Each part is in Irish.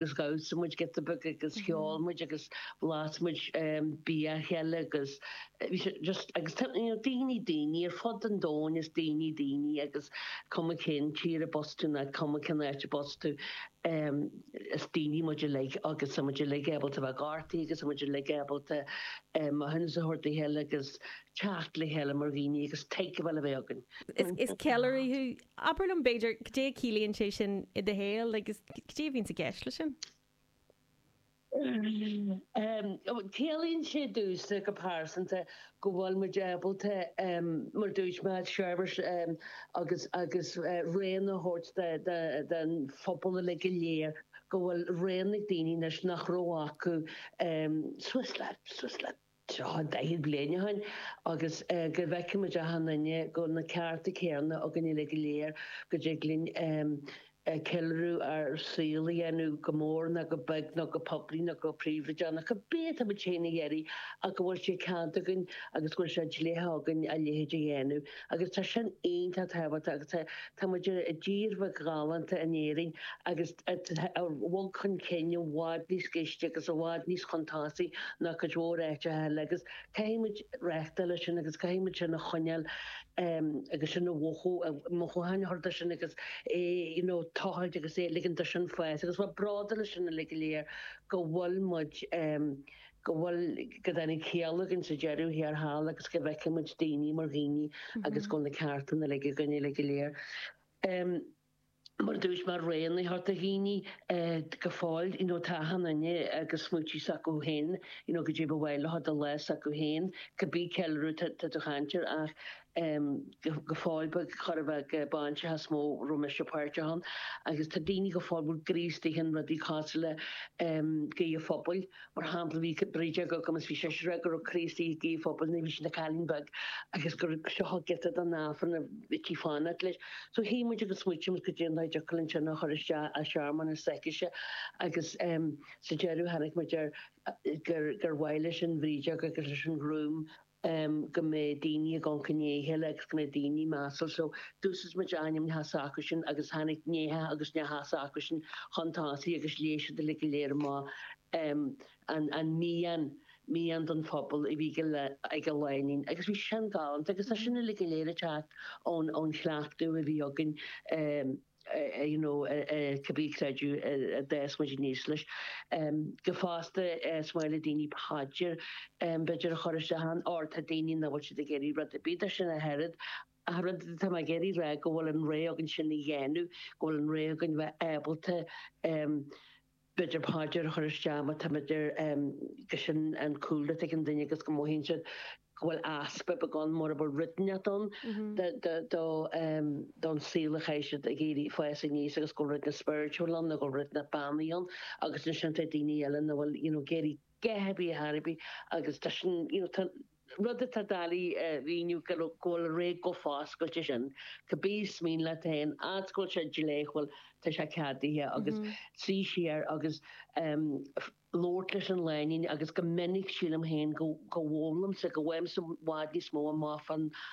Is dhamhsaigh muid giota beag agus cheol muid agus bhlas muid bia a chéile agus bhí sé just agus tá you know daoine daoine ar fud an domhain is daoine daoine agus cuma cén tír arb as tú ná cuma cén áit arb as tú is daoine muid uilig agus tá muid uilig ábalta bheith gortaithe agus tá muid uilig ábalta mothúcháin a thabhairt dá chéile agus teacht le chéile mar dhaoine agus tuigfeá le bheith againn. Is ceiliúraí thú Abair liom, b'fhéidir, cad é a chiallaíonn sé sin i do shaol agus cad é a bhíonn i gceist leis sin? Ciallaíonn sé domhsa, go pearsanta, go bhfuil muid ábalta, mar a dúirt mé, seirbhís agus rogha a thabhairt don phobal uilig go léir, go bhfuil rogha ag daoine anois nach raibh acu. Swiss life, Swiss life. tráth 40 bliain ó shin agus go bhfeicimid achan duine go bhfuil na cearta céanna againn uilig go léir, go dtig linn ceiliúradh ár saol a dhéanamh go mór nó go beag nó go poiblí nó go príobhaideach, cibé atá muid féin ag iarraidh ach go bhfuil sé ceadaithe againn agus go bhfuil sé dleathach againn a leithéid a dhéanamh. Agus tá sin iontach tábhachtach agus tá muid i dtír bheag ghalánta in Éirinn agus. a bhog chun cinn i bhfad níos gaiste agus i bhfad níos suntasaí ná cuid mhór áiteacha eile agus caithfimid reáchtáil leis sin agus caithfimid sin a choinneáil agus sin a mhothú, mothúcháin a chur dó sin agus é you know tochailt agus a ligint dó sin fás agus bheith bródúil as sin uilig go léir go bhfuil muid go bhfuil go dtáinig ciall againn sa deireadh thiar thall agus go bhfeicimid daoine mar dhaoine agus go bhfuil na cearta uilig againn uilig go léir. mar dúirt mé rogha a thabhairt do dhaoine go fóill you know tá achan duine agus smaointí s'acu féin you know cad é ba mhaith leo do lá s'acu féin cibé ceiliúradh tá tú ag caint air ach em go fóill ba cuir i gcás bainis amháin a raibh mise páirteach ann agus tá daoine go fóill bhfuil Críostaí ann rudaí cosúil le em guí an phobail Mar shampla, bhí brídeog agam is bhí sé siúr go raibh ag scríobh guí an phobail nuair a bhí sí ina cailín beag agus gur seo thug giota den Aifreann a bhíodh sí ag fanacht leis. So shuigh muid agus smaoinigh muid cad é an dóigh a dtiocfadh linn sin a chur isteach i searmanas s'aicise agus sa deireadh tháinig muid ar gur mhaith leis an bhrídeog agus leis an ghrúm em, go mbeadh daoine níos cineálta lena chéile agus go mbeadh daoine measúil. So, d'úsáid muid aintíneacha s'acusan agus tháinig nianna agus neachtanna s'acusan chun tosaigh agus léigh siad uilig go léir mo, em, an, an mian, mian don phobal a bhí ag le, ag an lánúin agus bhí sé sin galánta agus tá sin uilig go léir ag teacht ón, ón chleachtadh a bhí againn, em, cibé creideamh a d'fhás muid aníos leis. Go, fosta, is maith le daoine paidir, b'fhéidir, a chur isteach ann, óir tá daoine nach bhfuil siad ag iarraidh rud ar bith, de sin, ach oiread, ach rud atá mé ag iarraidh rá go bhfuil an rogha againn sin a dhéanamh, go bhfuil an rogha againn bheith ábalta, B'fhéidir paidir a chur isteach má tá b'fhéidir gur sin an cúlra atá ag an duine agus go mothaíonn siad go bhfuil easpa beag ann mura bhfuil rud inteacht ann do don saol a chaith siad ag éirí fás aníos agus go bhfuil rud inteacht spiritual ann nó go bhfuil rud inteacht beannaithe ann agus ansin tá daoine eile nach bhfuil you know ag iarraidh a dhath ar bith a dhath ar bith agus tá sin you know tá rud atá doiligh a mhíniú go bhfuil rogha chomh foscailte sin, cibé is mian leat féin, fhad 's go bhfuil sé dleathúil tá sé ceadaithe agus suí siar agus labhairt leis an lánúin agus go minic sílim féin go bhfoghlaimímse, go bhfaighimse i bhfad níos mó amach fán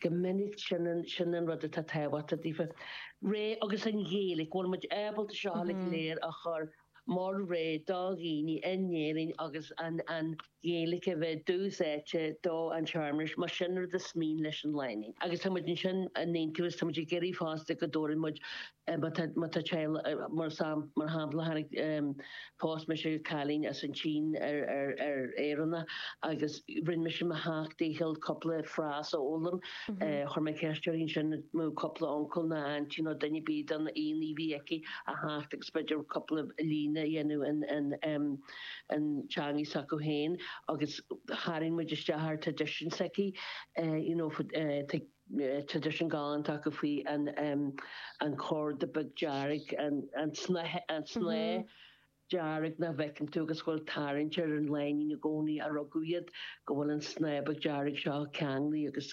Go minic, sin an rud atá tábhachtach, daofa, rogha. Agus an Ghaeilge? Go bhfuil muid ábalta seo uilig go léir a chur mar rogha do dhaoine in Éirinn agus an Ghaeilge a bheith i dtús áite don tsearmanas, más sin an rud is mian leis an lánúin. Agus tá muid ansin in Entheos, tá muid ag iarraidh fosta go dtabharann muid Má tá sé, mar shampla, tháinig phós mise cailín as an tSín ar Éireannach agus rinne mise mo sheacht ndícheall cúpla frása a fhoghlaim. Chuir mé ceist uirthi ansin nó cúpla uncail nó aintín nó duine ar bith den aon ní a bhí aici a theacht agus b'fhéidir cúpla líne a dhéanamh in teangaidh s'acu féin agus tharraing muid isteach ar traidisiún s'aici, you know, traidisiún galánta acu faoi an chorda beag dearg, an snáth dearg nach bhfeiceann tú agus go bhfuil tarraingt ar an lánúin i gcónaí ó rugadh iad, go bhfuil an snáth beag dearg seo ceanglaithe agus.